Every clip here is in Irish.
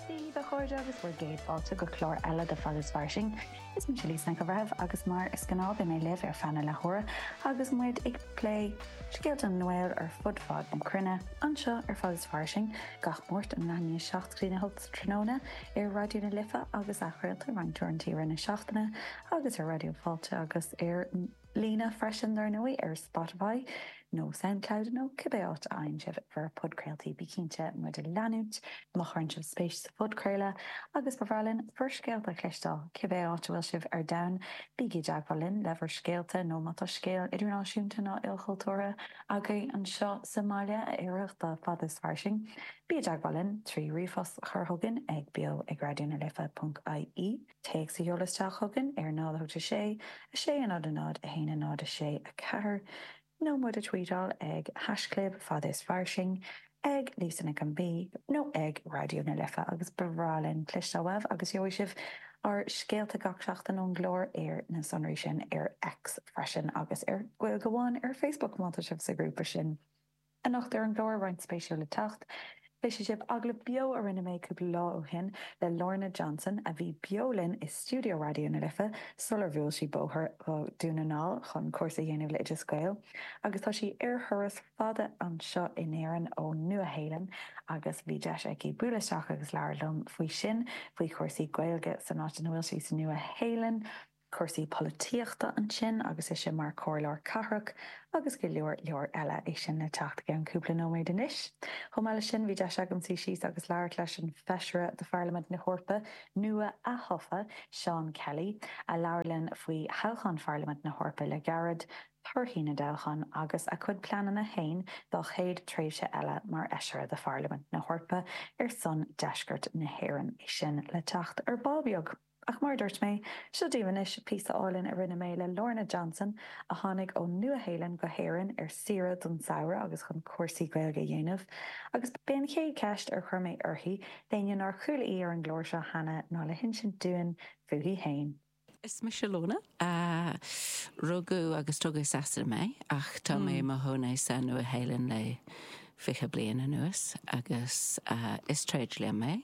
Dia daoibh a chairde agus bhur gcéad fáilte go clár eile de Fada is Fairsing. Is mise Lisa Nic an Bhreithimh agus mar is gnáth beidh mé libh ar feadh na leathuaire agus muid ag plé scéalta na nGael ar fud fad na cruinne anseo ar Fada is Fairsing gach Máirt óna leath i ndiaidh 7 go dtí a hocht tráthnóna ar Raidió na Life agus athchraolta roinnt uaireanta i rith na seachtaine agus ar Raidió Fáilte agus ar líne freisin dár ndóigh ar Spotify nó Soundcloud nó cibé áit a fhaigheann sibh bhur podchraoltaí. Bígí cinnte muid a leanúint má chuireann sibh spéis sa phodchraoladh agus ba bhreá linn bhur scéalta a chloisteáil. Cibé áit a bhfuil sibh ar domhan, bígí i dteagmháil linn le bhur scéalta nó má tá scéal idirnáisiúnta nó ilchultúrtha agaibh anseo sa mbaile a oirfeadh do Fada is Fairsing, bígí i dteagmháil linn trí ríomhphost a chur chugainn ag beo ag raidiona life ponc ie. Téacs a sheoladh isteach chugainn ar 08:00, 06:00, 06:00, 00:00, 01:00, 06:04, nó muid a tweetáil ag hashchlib fada is fairsing, ag Lisa Nic an B, nó ag Raidió na Life, agus ba bhreá linn cloisteáil uaibh, agus gheobhaidh sibh ár scéalta gach seachtain ón gclár ar na sonraí sin ar X freisin, agus ar Gaeilge Amháin ar Facebook, má tá sibh sa ghrúpa sin. Anocht ar an gclár aíonna spéisiúla le teacht. Cloisfidh sibh agallamh beo a rinne mé cúpla lá ó shin le Lorna Johnson a bhí beo linn i stiúideo Raidió na Life sular bhuail sí bóthar go Dún na nGall chun cúrsa a dhéanamh le Oideas Gael agus tá sí ar thuras fada anseo in Éirinn ó Nua Shéalainn agus bhí deis aici buail isteach agus labhair liom faoi sin faoi chúrsaí Gaeilge san áit ina bhfuil sí sa Nua Shéalainn. cúrsaí polaitíochta ansin agus ise mar chomhairleoir cathrach agus go leor leor eile. É sin le teacht i gceann cúpla nóiméad anois. Chomh maith leis sin, bhí deis agam suí síos agus labhairt leis an bhFeisire do Pharlaimint na hEorpa nua-atofa, Seán Kelly, a labhair linn faoi thoghchán Pharlaimint na hEorpa le gairid, torthaí na dtoghchán agus a chuid pleananna féin dá chéad tréimhse eile mar Fheisire do Pharlaimint na hEorpa ar son deisceart na hÉireann. É sin le teacht ar ball beag. Ach mar a dúirt mé, seo daoibh anois píosa álainn a rinne mé le Lorna Johnson, a tháinig ón Nua-Shéalainn go hÉirinn ar saoire don samhradh agus chun cúrsaí Gaeilge a dhéanamh, agus b'é an chéad cheist a chuir mé uirthi, d'éinne nár chuala í ar an gclár seo cheana, ná le hinsint dúinn fúithi fhéin. Is mise Lorna. Rugadh agus tógadh i Sasana mé, ach tá mé i mo chónaí sa Nua-Shéalainn le fiche bliain anuas, agus is tréidlia mé.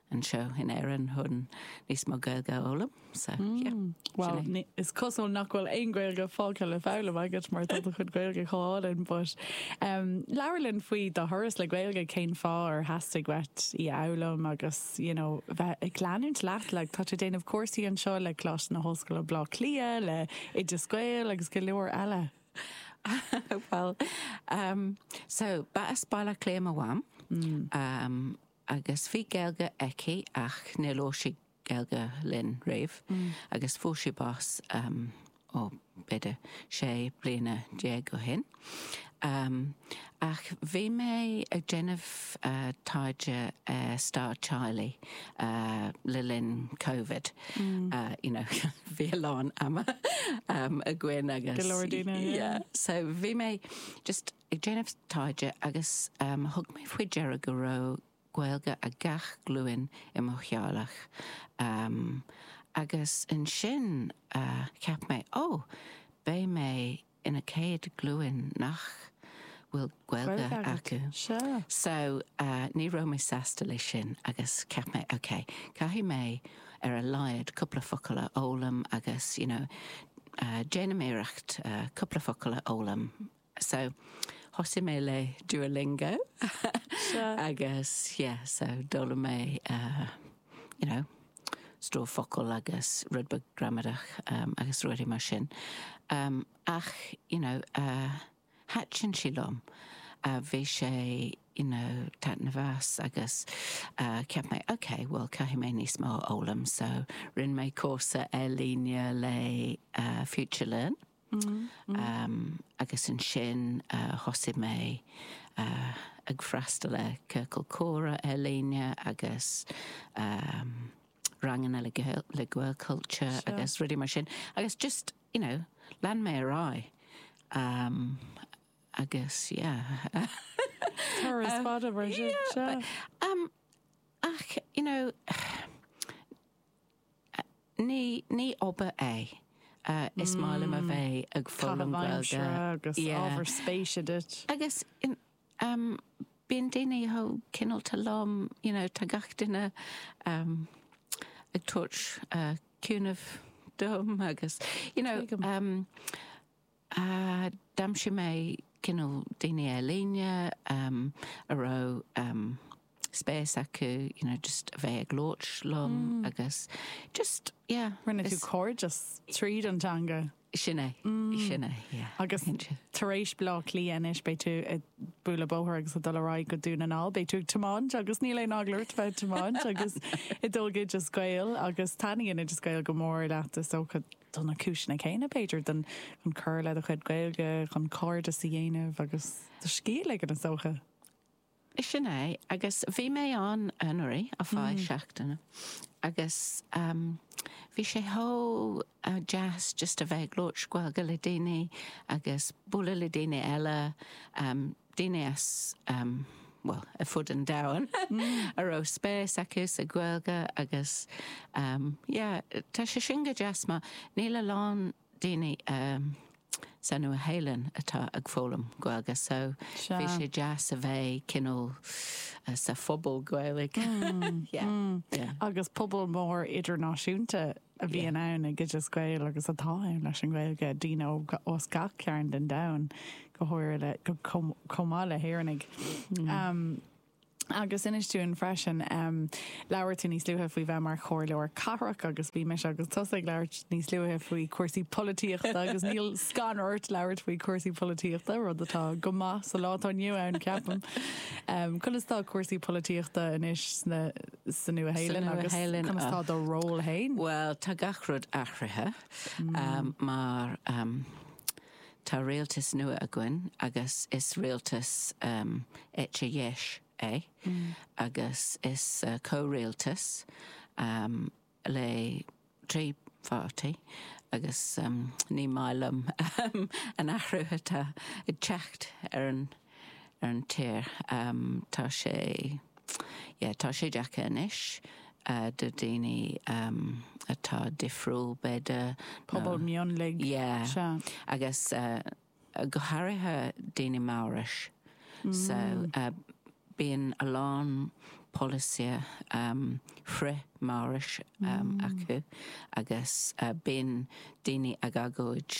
anseo in Éirinn chun níos mó Gaeilge a fhoghlaim. So, yeah. Mm. Well, is cosúil nach bhfuil aon Ghaeilge fágtha le foghlaim agat mar tá do chuid Gaeilge chomh hálainn, but um, labhair linn faoi do thuras le Gaeilge, cén fáth ar theastaigh uait í a fhoghlaim agus, you know, bheith ag leanúint leat, like, tá tú ag déanamh cúrsaí anseo le Coláiste na hOllscoile Bhleá Cliath, le Oideas Gael agus go leor eile. well, um, so, ba as Baile Átha Cliath mo mham. Mm. Um, agus bhí Gaeilge aici ach níor labhair sí Gaeilge linn riamh agus fuair sí bás, ó, b'fhéidir sé bliana déag ó shin. Ach bhí mé ag déanamh taighde ar stair teaghlaigh le linn Covid, you know, bhí a lán ama againn agus, yeah, so bhí mé just, ag déanamh taighde agus thug mé faoi deara go raibh Gaeilge ag gach glúin i mo theaghlach agus ansin cheap mé, ó, beidh mé ina céad glúin nach bhfuil Gaeilge acu. So, ní raibh mé sásta leis sin agus cheap mé, ok, caithfidh mé ar a laghad cúpla focal a fhoghlaim agus, you know, déanaim iarracht cúpla focal a fhoghlaim. So, thosaigh mé le Duolingo agus yeah, so d'fhoghlaim mé you know, stór focal agus rud beag gramadach agus rudaí mar sin. Ach, you know, thaitnigh sí liom. Bhí sé, you know, taitneamhach agus cheap mé ok, well caithfidh mé níos mó a fhoghlaim. So, rinne mé cúrsa ar líne le FutureLearn. Agus ansin thosaigh mé ag freastal ar ciorcal comhrá ar líne agus ranganna le Gaelchultúr agus rudaí mar sin agus just, you know, lean mé ar aghaidh agus yeah. Turas fada mar sin. Ach, you know, Ní, ní obair é. Is maith liom a bheith ag foghlaim Gaeilge. Agus ábhar spéise duit. Agus bíonn daoine chomh cineálta liom, you know, tá gach duine ag tabhairt cúnamh dom agus, you know, D'aimsigh mé cineál daoine ar líne a raibh spéis acu you know just a bheith ag labhairt liom agus just yeah. Rinne tú cairdeas tríd an teanga. Sin é, sin é yeah. Agus tar éis Bleá Cliath anois beidh tú ag bualadh bóthair agus ag dul ar aghaidh go Dún na nGall, beidh tú ag tiomáint agus níl aon eagla ort bheith ag tiomáint agus ag dul go Oideas Gael agus taitníonn Oideas Gael go mór leat is dócha. do na cúiseanna céanna, b'fhéidir, don chun cur le do chuid Gaeilge, chun cairdeas a dhéanamh agus do scíth a ligean, is dócha. Sin é, agus bhí mé ann anuraidh, ar feadh seachtaine, agus bhí sé chomh deas just a bheith ag labhairt Gaeilge le daoine agus bualadh le daoine eile. daoine as, bhuel, ar fud an domhain a raibh spéis acu sa Ghaeilge agus, yeah, tá sé sin go deas mar níl a lán daoine sa Nua-Shéalainn atá ag foghlaim Gaeilge so bhí sé deas a bheith cineál sa phobal Gaeilge, yeah, yeah. Agus pobal mór idirnáisiúnta a bhíonn ann ag Oideas Gael agus atá ann leis an Ghaeilge, daoine os gach cearn den domhan, go háirithe chomh maith le hÉireannaigh. Agus inis dúinn freisin, labhair tú níos luaithe faoi bheith mar chomhairleoir cathrach agus bhí mise agus tusa ag labhairt níos luaithe faoi chúrsaí polaitíochta agus níl scanradh ort labhairt faoi chúrsaí polaitíochta, rud atá go maith sa lá atá inniu ann, ceapaim. Conas tá cúrsaí polaitíochta anois sna. sa Nua-Shéalainn agus conas atá do ról fhéin? Bhuel, tá gach rud athraithe mar tá rialtas nua againn agus is rialtas eite dheis é agus is comhrialtas le trí pháirtí agus ní maith liom an athrú atá ag teacht ar an tír. Tá sé, yeah, tá sé deacair anois do dhaoine atá difriúil, b'fhéidir, nó. Pobal mionlaigh. Yeah. Sea. Agus. go háirithe daoine Maorais so bíonn a lán polasaithe frith Maorais acu agus bíonn daoine ag agóid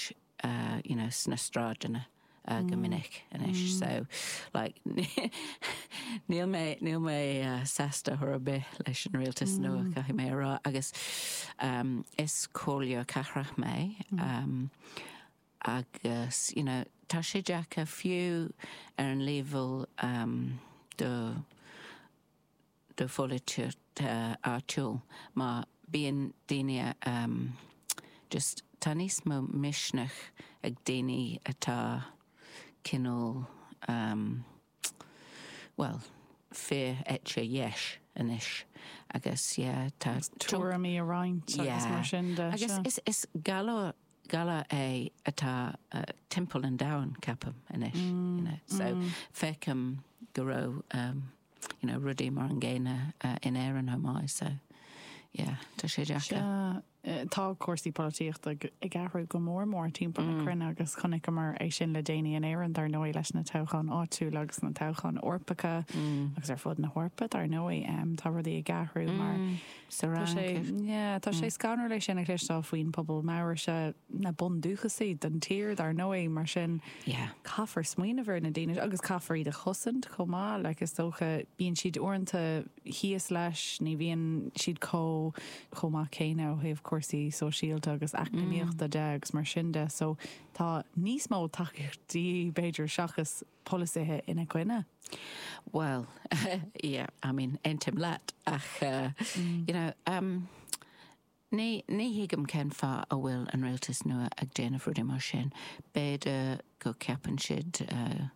you know sna sráideanna go minic anois so like níl mé, níl mé sásta chor ar bith leis an rialtas nua caithfidh mé a rá agus is comhairleoir cathrach mé Agus you know tá sé deacair fiú ar an leibhéal do pholaitíocht áitiúil mar bíonn daoine just tá níos mó misneach ag daoine atá cineál, Bhuel, fíor-eite dheis anois agus yeah tá tuairimí a roinnt agus mar sin de. Agus is is galar galar é atá timpeall an domhain ceapaim anois you know so feicim go raibh umm you know rudaí mar an gcéanna in Éirinn chomh maith so yeah tá sé deacair. Tá cúrsaí polaitíochta ag athrú go mór mór timpeall na cruinne agus chonaiceamar é sin le déanaí in Éirinn, dar ndóigh, leis na toghcháin áitiúla agus na toghcháin Eorpacha agus ar fud na hEorpa, dar ndóigh. Tá rudaí ag athrú mar sa Fhrainc. Tá sé scanrúil é sin a chloisteáil faoin bpobal Maoraise, na bundúchasaigh den tír, dar ndóigh, mar sin caithfear smaoineamh ar na daoine sin agus caithfear iad a chosaint chomh maith. Is dócha, bíonn siad uaireanta thíos leis, ní bhíonn siad chomh. chomh maith céanna ó thaobh cúrsaí sóisialta agus eacnamaíochta de agus mar sin de. So tá níos mó tacaíocht de dhíth, b'fhéidir, seachas polasaithe ina gcoinne. Bhuel, yeah, I mean, aontaím leat ach you know, em, ní, ní thuigim cén fáth a bhfuil an rialtas nua ag déanamh rudaí mar sin. B'fhéidir go ceapann siad, eh,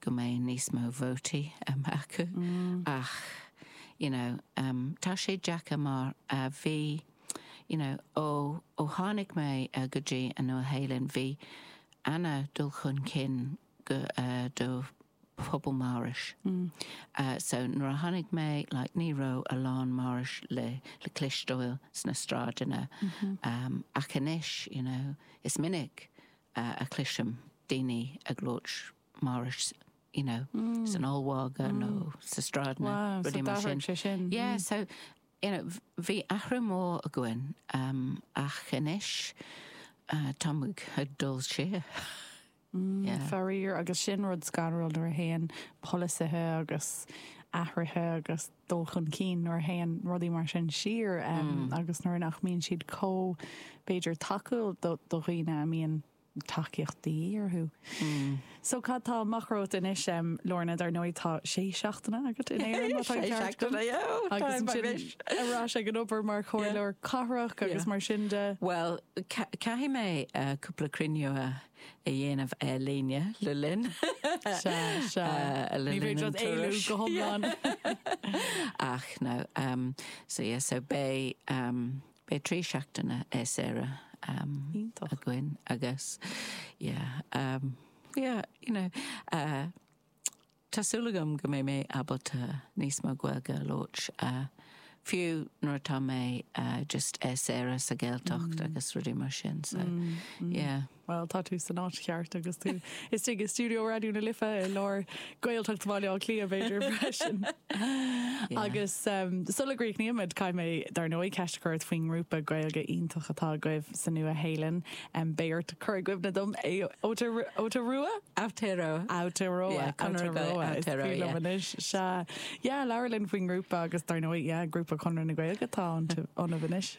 go mbeidh níos mó vótaí, em, acu ach. you know, em, tá sé deacair mar, eh, bhí, you know, ó, ó tháinig mé, eh, go dtí an Nua-Shéalainn, bhí ana dul chun cinn go, eh, do phobal Maorais. Eh, so nuair a tháinig mé, like, ní raibh a lán Maorais le, le cloisteáil sna sráideanna. Em, ach anois, you know, is minic, eh, a chloisim daoine ag labhairt. Maorais you know san ollmhargadh nó sa stráid nó rudaí mar sin. Wow, so d'athraigh sé sin. Yeah, so you know bhí athrú mór againn um ach anois tá muid ag dul siar. Yeah. Faraor, agus sin rud scanrúil nuair a théann polasaithe agus athruithe agus dul chun cinn, nuair a théann rudaí mar sin siar um agus nuair nach mbíonn siad chomh, b'fhéidir, tacúil do do dhaoine a mbíonn tacaíocht de dhíth orthu. So cad tá amach romhat anois, Lorna? Dar ndóigh, tá sé seachtaine agat in Éirinn, má tá an ceart agam. Sé seachtaine, ó, tá mé anois. Ar ais ag an obair mar chomhairleoir cathrach agus mar sin de. Bhuel, caithfidh mé cúpla cruinniú a dhéanamh ar líne le linn. Sea, sea. Ní féidir leat éalú go hiomlán. Ach no, sea, so beidh, Beidh trí seachtaine saoire againn agus yeah, yeah, you know, tá súil agam go mbeidh mé ábalta níos mó Gaeilge a labhairt, fiú nuair atá mé just ar saoire sa Ghaeltacht agus rudaí mar sin. Bhuel, tá tú san áit cheart agus tú istigh i stiúideo Raidió na Life i lár Gaeltacht Bhaile Átha Cliath, b'fhéidir, freisin. Yeah. Agus um, sula gcríochnaímid, caithfidh mé dar ndóigh ceist a chur ort faoin ngrúpa Gaeilge iontach atá agaibh sa Nua-Shéalainn. Um, beidh ort cur i gcuimhne dom, Ao- Aotear- Aotearoa? Aotearoa. Aotearoa. Yeah, Conradh na Gael- Aotearoa. Is Aotearoa, brí liom yeah. anois. Sea. Yeah, labhair linn faoin ngrúpa agus dar ndóigh, yeah, grúpa Chonradh na Gaeilge atá iontu- ionaibh anois.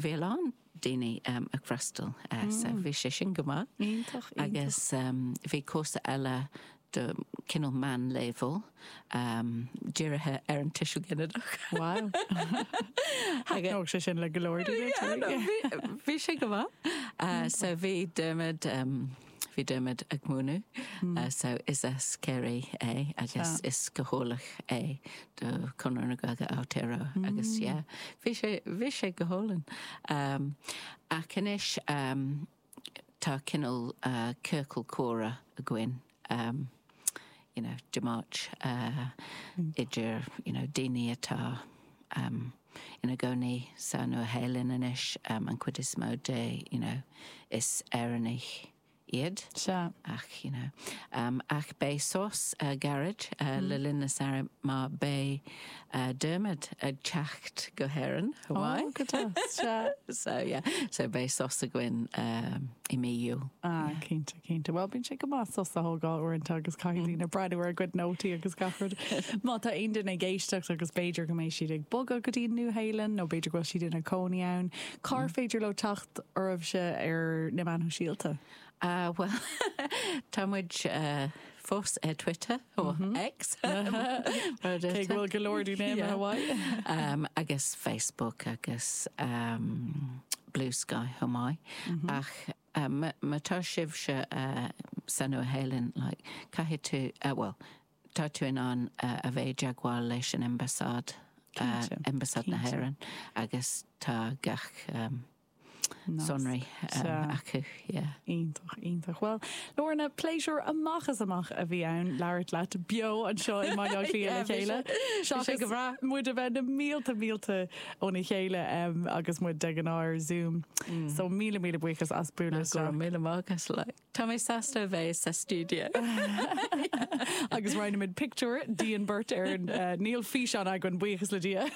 Bhí a lán daoine ag freastal so bhí sé sin go maith. Iontach, iontach. Agus bhí cúrsa eile do cineál meánleibhéal dírithe ar an tuiseal ginideach. Wow. Thaitneodh sé sin le go leor daoine. Bhí sé go maith. So bhí Dermot. Bhí Dermot ag múineadh so is as Kerry é agus is Gaeilgeoir é do Conradh na Gaeilge Aotearoa agus yeah bhí sé bhí sé go hálainn. Ach anois tá cineál ciorcal comhrá againn you know de Máirt idir you know daoine atá ina gcónaí sa Nua-Shéalainn anois, an chuid is mó de, you know is Éireannaigh iad. Sea. Ach, you know. Ach beidh sos gairid le linn an tsamhraidh mar beidh Dermot ag teacht go hÉirinn, haha. Oh, go deas. Sea. So, yeah. So beidh sos againn i mí Iúil. Ah, cinnte. Cinnte, bhuel bíonn sé go maith sos a thógáil uaireanta agus caithfidh daoine breathnú ar a gcuid nótaí agus gach rud. Má tá aon duine ag éisteacht agus b'fhéidir go mbeidh siad ag bogadh go dtí an Nua-Shéalainn nó b'fhéidir go bhfuil siad ina cónaí ann, cá háit ar féidir leo teacht oraibhse ar na Meáin Shóisialta? Bhuel, tá muid fós ar Twitter, nó X, cé go bhfuil go leor daoine imithe uaidh, agus Facebook agus Bluesky chomh maith ach. Má tá sibhse sa Nua Shéalainn, caithfidh tú, bhuel, tá tú in ann a bheith i dteagmháil leis an Ambasáid, Ambasáid na hÉireann, agus tá gach sonraí acu, yeah. Iontach, iontach. Bhuel, Lorna, pléisiúr amach is amach a bhí ann labhairt leat beo anseo i mBaile Átha Cliath le chéile. Bhí sé go breá. Muid a bheith na mílte, mílte óna chéile agus muid de ghnáth ar Zoom so míle míle buíochas as bualadh isteach. Go raibh míle maith agat like. Tá mé sásta a bheith sa stiúideo. Agus roinnfimid pictiúr dínn beirt ar níl físeán againn buíochas le Dia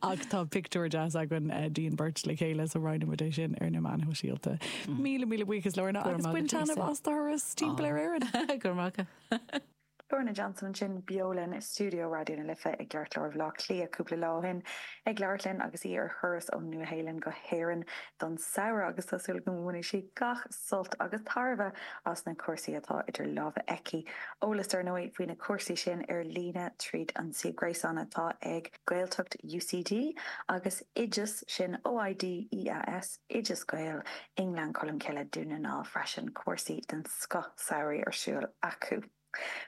ach tá pictiúr deas againn dínn beirt le chéile so roinnfimid é sin ar na meáin shóisialta. Míle míle buíochas Lorna agus bain taitneamh as do thuras timpeall ar Éirinn. Go raibh maith agat. Lorna Johnson ansin beo linn i stiúideo Raidió na Life i gceartlár Bhaile Átha Cliath cúpla lá ó shin ag labhairt linn agus í ar thuras ón Nua-Shéalainn go hÉirinn don samhradh agus tá súil agam go mbainfidh sí gach sult agus tairbhe as na cúrsaí atá idir lámha aici. Eolas, ar ndóigh, faoi na cúrsaí sin ar líne tríd an suíomh gréasáin atá ag. Gaeltacht UCD agus oideas, sin OI DEAS, Oideas Gael, i nGleann Cholm Cille, Dún na nGall, freisin cúrsaí den scoth samhraidh ar siúl acu.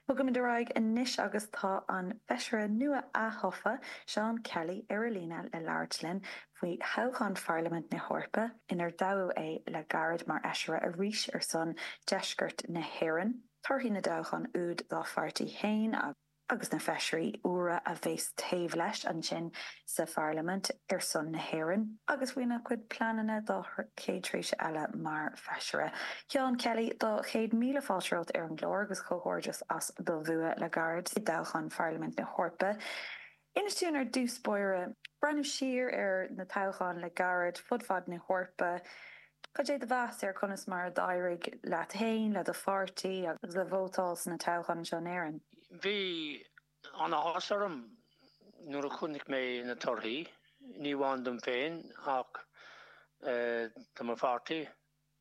Bogaimid ar aghaidh anois agus tá an Feisire nua ath-thofa, Seán Kelly, ar an líne le labhairt linn faoi thoghchán Pharlaimint na hEorpa, inar toghadh é le gairid mar Fheisire arís ar son Deisceart na hÉireann, torthaí na dtoghchán úd dá pháirtí fhéin agus. agus na feisirí úra a bheas taobh leis ansin sa Pharlaimint ar son na hÉireann agus faoina gcuid pleananna dá chéad tréimhse eile mar Feisire. Sheán Kelly, tá céad míle fáilte romhat ar an gclár agus comhghairdeas as do bhua le gairid i dtoghchán Pharlaimint na hEorpa. Inis dúinn ar dtús báire, ag breathnú siar ar na toghcháin le gairid fud fad na hEorpa, Cad é do mheas ar conas mar a d'éirigh leat féin, le do pháirtí agus le vótáil sna toghcháin anseo in Éirinn? Bhí an-áthas orm nuair a chonaic mé na torthaí, ní amháin dom féin ach do mo pháirtí,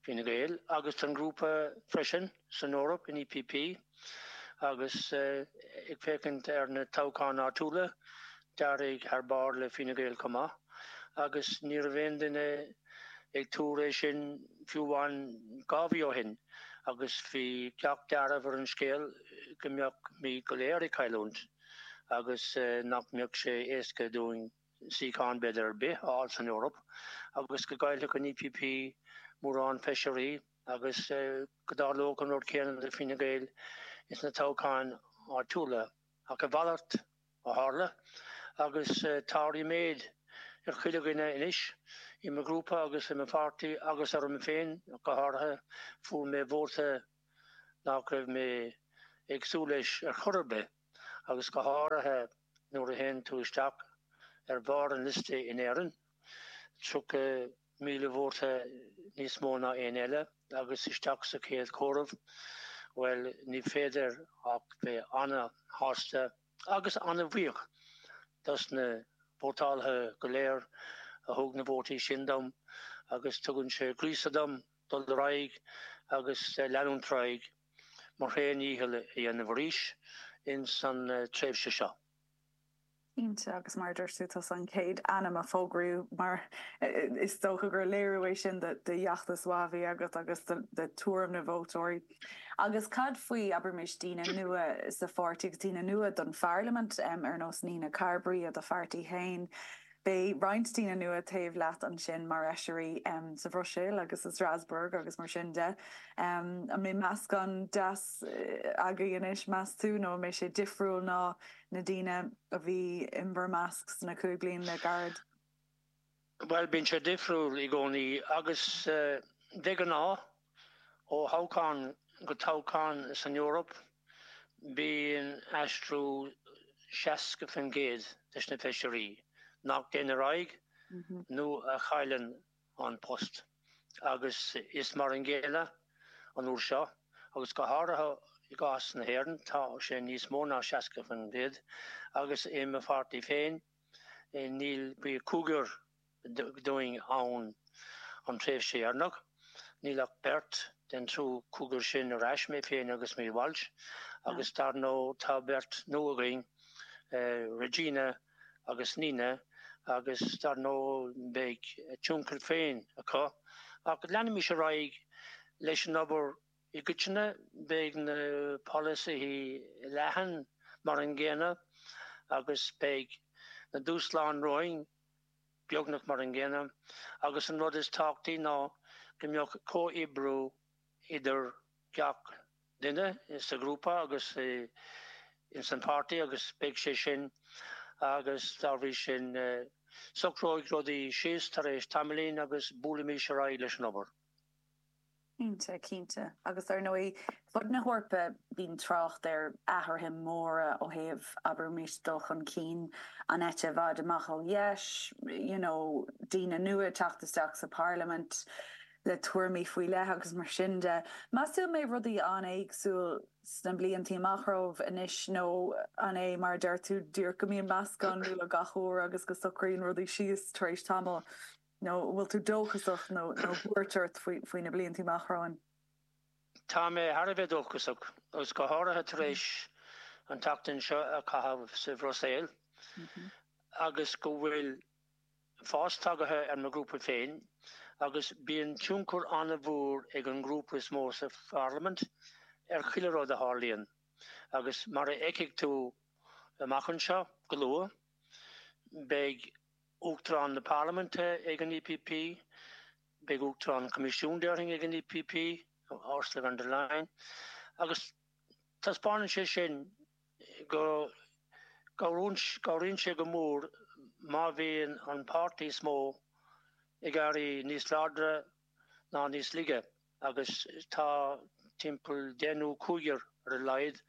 Fine Gael, agus don ghrúpa freisin. san Eoraip, an EPP, agus ag féachaint ar na toghcháin áitiúla, d'éirigh thar barr le Fine Gael chomh maith, agus ní raibh aon duine ag tuar é sin fiú amháin dhá mhí ó shin, agus bhí cách dearfa ar an scéal go mbeimis go léir ag cailliúint agus nach mbeadh sé éasca dúinn suíochán, b'fhéidir, ar bith a fháil san Eoraip, agus go gcaillfeadh an EPP mórán feisirí. Agus go dtarlódh an rud céanna do Fine Gael ins na toghcháin áitiúla. Ach a mhalairt a tharla. Agus tá ríméad ar chuile dhuine anois, i mo ghrúpa agus i mo pháirtí agus orm féin go háirithe, fuair mé vóta nach raibh mé ag súil leis ar chor ar bith, agus go háirithe nuair a théann tú isteach ar bharr an liosta in Éirinn, 30 Míle vóta níos mó ná éinne eile agus isteach sa chéad chomhaireamh. Bhuel, ní féidir ach bheith ana-shásta agus ana-bhuíoch dos na vótálaithe go léir a thug na vótaí sin dom agus tugann sé gríosadh dom dul ar aghaidh agus leanúint ar aghaidh mo thréan-dhícheall a dhéanamh arís insan tréimhse seo. Cinnte, agus mar a dúirt tú, tusa an chéad ainm a fógraíodh agus is dócha gur léiriú é sin de fheachtas maith a bhí agat agus de tuairim na vótóirí. Agus cad faoi, abraimis, daoine nua sa pháirtí agus daoine nua don pharlaimint, ar nós Nina Carberry i do pháirtí féin? Beidh roinnt daoine nua taobh leat ansin mar fheisirí sa Bhruiséil agus i Strasbourg agus mar sin de. An mbeidh meascán deas againn anois, meas tú, nó an mbeidh sé difriúil ná na daoine a bhí in bhur measc sna cúig bliain le gairid? Bhuel, bíonn sé difriúil i gcónaí agus de ghnáth ó thoghchán go toghchán san Eoraip bíonn aistriú 60% de na feisirí nach dtéann ar aghaidh nó a chailleann an post. Agus is mar an gcéanna an uair seo, agus go háirithe i gcás na hÉireann, tá sé níos mó ná 60%, agus i mo pháirtí féin níl, bhí cúigear dínn ann an tréimhse dheireanach, níl ach beirt den triú cúigear sin ar ais, mé féin agus Maria Walsh, agus dar ndóigh tá beirt nua againn, Regina. agus Nina agus dar ndóigh beidh a tionchar féin acu ach leanaimis ar aghaidh leis an obair i gcoitinne, beidh na polasaithe leathan mar an gcéanna agus beidh na dúshláin romhainn beagnach mar an gcéanna agus an rud is tábhachtaí ná go mbeadh comhoibriú idir gach duine sa ghrúpa agus ins an páirtí agus beidh sé sin agus dá bhrí sin socróidh rudaí síos tar éis tamaillín agus buailfimid ar aghaidh leis an obair. Cinnte, cinnte. Agus ar ndóigh, ar fud na hEorpa bíonn trácht ar athruithe móra ó thaobh, abraimis, dul chun cinn an eite i bhfad amach ar dheis, you know, daoine nua ag teacht isteach sa Pharlaimint. le tuairimí faoi leith agus mar sin de. Meas tú an mbeidh rudaí an-éagsúil sna bliantaí amach romhaibh anois nó an é mar a deir tú díreach go mbíonn meascán nua gach uair agus go socraíonn rudaí síos tar éis tamaill? Nó an bhfuil tú dóchasach nó an bhfuil buairt ort faoi na bliantaí amach romhainn? Tá mé thar a bheith dóchasach, agus go háirithe tar éis an tseachtain seo a chaitheamh sa Bhruiséil agus go bhfuil, fás tagtha ar mo ghrúpa féin agus bíonn tionchar an-mhór ag an ngrúpa is mó sa Pharlaimint ar chuile rud a tharlaíonn agus mar a fheicfidh tú amach anseo go luath, beidh Uachtarán na Parlaiminte ag an EPP, beidh Uachtarán an Choimisiúin, déarfainn, ag an EPP, Ursula von der Leyen, agus taispeánann sé sin. go gcabhraíonn sé go mór má bhíonn an páirtí is mó ag éirí níos láidre ná níos laige agus tá timpeall deich nó cúigear, ar a laghad,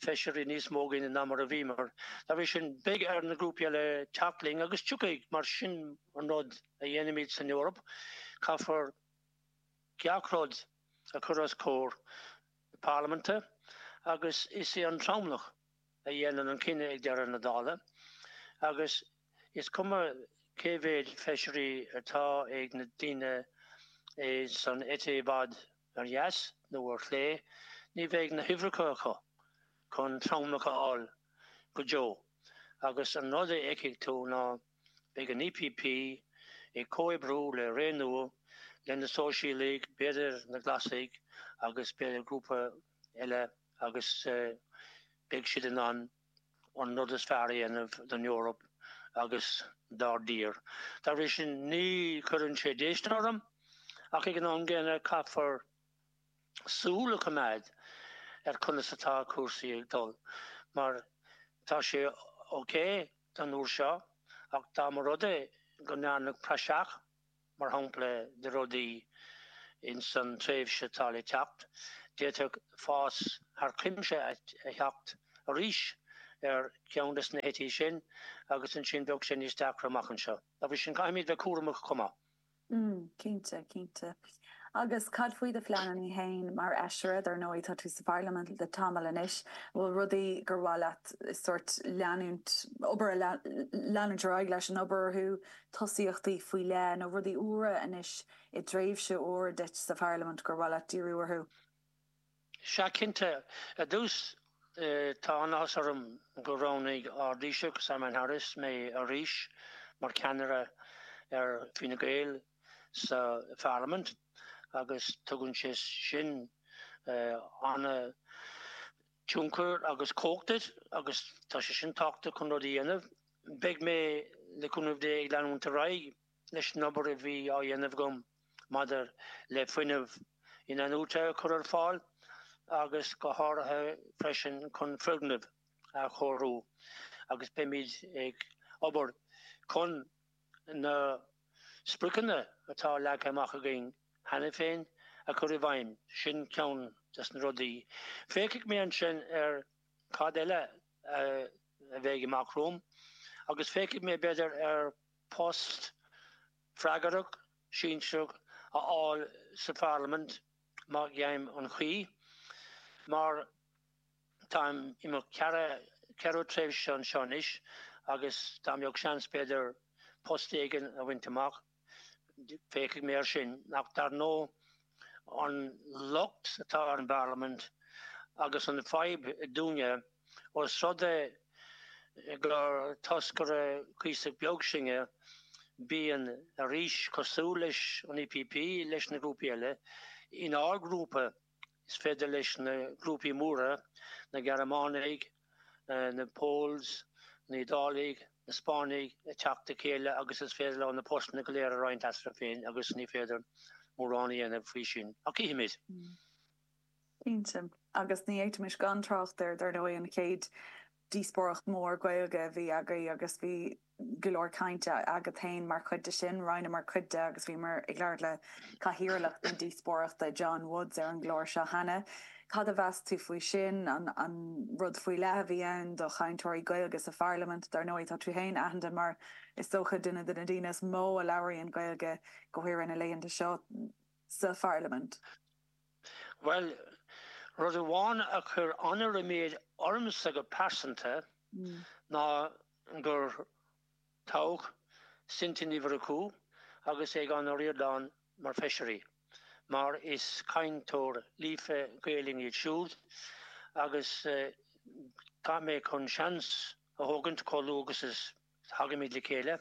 feisirí níos mó againn ná mar a bhíomar. Dá bhrí sin, beidh ar na grúpaí eile teacht linn agus tiocfaidh. Mar sin an rud a dhéanaimid san Eoraip, caithfear gach rud. a chur os comhair na Parlaiminte agus is é an tromlach a dhéanann an cinneadh ag deireadh na dála agus is cuma cé mhéid feisirí atá ag na daoine san eite i bhfad ar dheas nó ar chlé, ní bheidh na huimhreacha acu chun tromlach a fháil go deo agus an rud a fheicfidh tú ná. Beidh an EPP ag comhoibriú le Renew, le na Sóisialaigh, b'fhéidir na Glasaigh agus b'fhéidir grúpa eile agus beidh siad in ann an rud is fearr a dhéanamh don Eoraip agus dár dtír. Dá bhrí sin ní chuireann sé déistin orm, ach ag an am gcéanna caithfear súil a choimeád ar conas atá cúrsaí ag dul, mar tá sé ok, an uair seo, ach dá mba rud é go ndearnadh praiseach, mar shampla, de rudaí ins an tréimhse atá le teacht, d'fhéadfadh fás thar cuimse a theacht arís ar cheann des na heití sin agus ansin bheadh sé níos deacra amach anseo. Dá bhrí sin, caithfimid bheith cúramach chomh maith. Mm, cinnte, cinnte. Agus cad faoi do phleananna féin mar fheisire? Dar ndóigh, tá tú sa Pharlaimint le tamall anois. An bhfuil rudaí gur mhaith leat sórt leanúint, obair a leanúint ar aghaidh leis an obair orthu, tosaíochtaí faoi leith, nó rudaí úra anois i dtréimhse úr duit sa Pharlaimint gur mhaith leat díriú orthu? Sea, cinnte, ar dtús tá an-áthas orm gur roghnaigh ár dTaoiseach, Simon Harris, mé arís mar cheannaire ar Fine Gael sa Pharlaimint agus tugann sé sin an-tionchar agus cumhacht duit agus tá sé sin tábhachtach chun rudaí a dhéanamh. Beidh mé, le cúnamh Dé, ag leanúint ar aghaidh. Leis an obair a bhí á dhéanamh agam maidir le fuinneamh inathnuaite a chur ar fáil agus go háirithe freisin chun foirgnimh a chóiriú agus beimid ag obair chun na spriocanna atá leagtha amach againn cheana féin a chur i bhfeidhm. Sin ceann des na rudaí. Féachfaidh mé ansin ar cad eile a bheidh amach romham agus féachfaidh mé b'fhéidir ar post freagrach sinsearach a fháil sa Pharlaimint má gheibhim an chaoi, mar táim i mo cheathrú tréimhse anseo anois agus dá mbeadh seans, b'fhéidir, post éigin a bhaint amach, féachfaidh mé air sin. Ach dar ndóigh. an locht atá ar an bParlaimint agus an fhadhb dúinne, ós rud é gur toscaire cuíosach beag sinne, bíonn arís cosúil leis an EPP leis na grúpaí eile, inár grúpa is féidir leis na grúpaí móra, na Gearmánaigh, na Poles, na hIodálaigh, na Spáinnigh ag teacht le chéile agus is féidir leo na postanna go léir a roinnt eatarthu féin agus ní féidir mórán a dhéanamh faoi sin. Ach chífimid! Cinnte. Agus ní fhéadfaimis gan trácht ar, dar ndóigh, an chéad díospóireacht mhór Ghaeilge a bhí againn agus bhí, go leor cainte agat féin mar chuid de sin. Roinneamar cuid de agus bhíomar ag labhairt le cathaoirleach na díospóireachta, John Woods, ar an gclár seo cheana. Cad a mheas tú faoi sin? An rud faoi leith a bhí ann do chainteoirí Gaeilge sa Pharlaimint? Dar ndóigh, tá tú féin aitheanta mar, is dócha, duine de na daoine is mó a labhraíonn Gaeilge go háirithe na laethanta seo sa Pharlaimint. Bhuel, rud amháin a chuir an-ríméad ormsa go pearsanta ná gur toghadh Cynthia Ní Mhurchú agus Aodhán Ó Ríordáin mar fheisirí, mar is cainteoirí líofa Gaelainne iad siúd, agus tá mé chun seans a thógaint, chomh luath agus a thagaimid le chéile,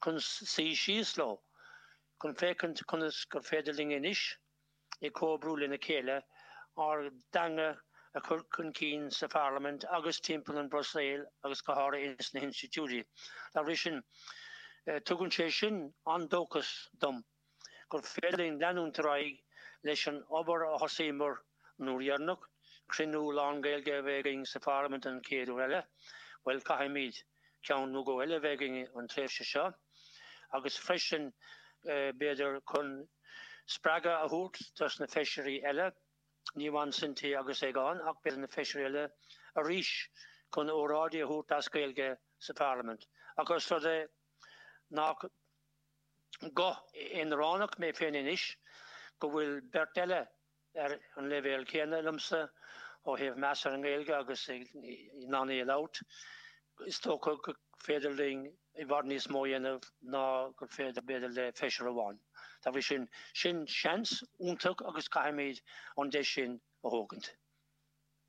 chun suí síos leo, chun féachaint conas gur féidir linn anois ag comhoibriú lena chéile, ár dteanga a chur chun cinn sa Pharlaimint agus timpeall an Bhruiséal agus go háirithe ins na hinstitiúidí. Dá bhrí sin, tugann sé sin an-dóchas dom gur féidir linn leanúint ar aghaidh leis an obair a thosaíomar an uair dheireanach, cruinniú lán-Ghaeilge a bheith againn sa Pharlaimint an chéad uair riamh. Bhuel, caithfimid. ceann nó dhó eile a bheith againn an tréimhse seo agus freisin b'fhéidir chun spreagadh a thabhairt dos na Feisirí eile, ní amháin Cynthia agus Aodhán ach b'fhéidir na Feisirí eile arís chun óráidí a thabhairt as Gaeilge sa Pharlaimint. Ach ós rud é nach guth aonaránach mé féin anois go bhfuil beirt eile, ar an leibhéal céanna liomsa ó thaobh meas ar an nGaeilge agus in ann í a labhairt. Is dócha gur féidir linn i bhfad níos mó a dhéanamh ná gur féidir, b'fhéidir, le feisire amháin. Dá bhrí sin, sin seans iontach agus caithfimid an deis sin a thógaint.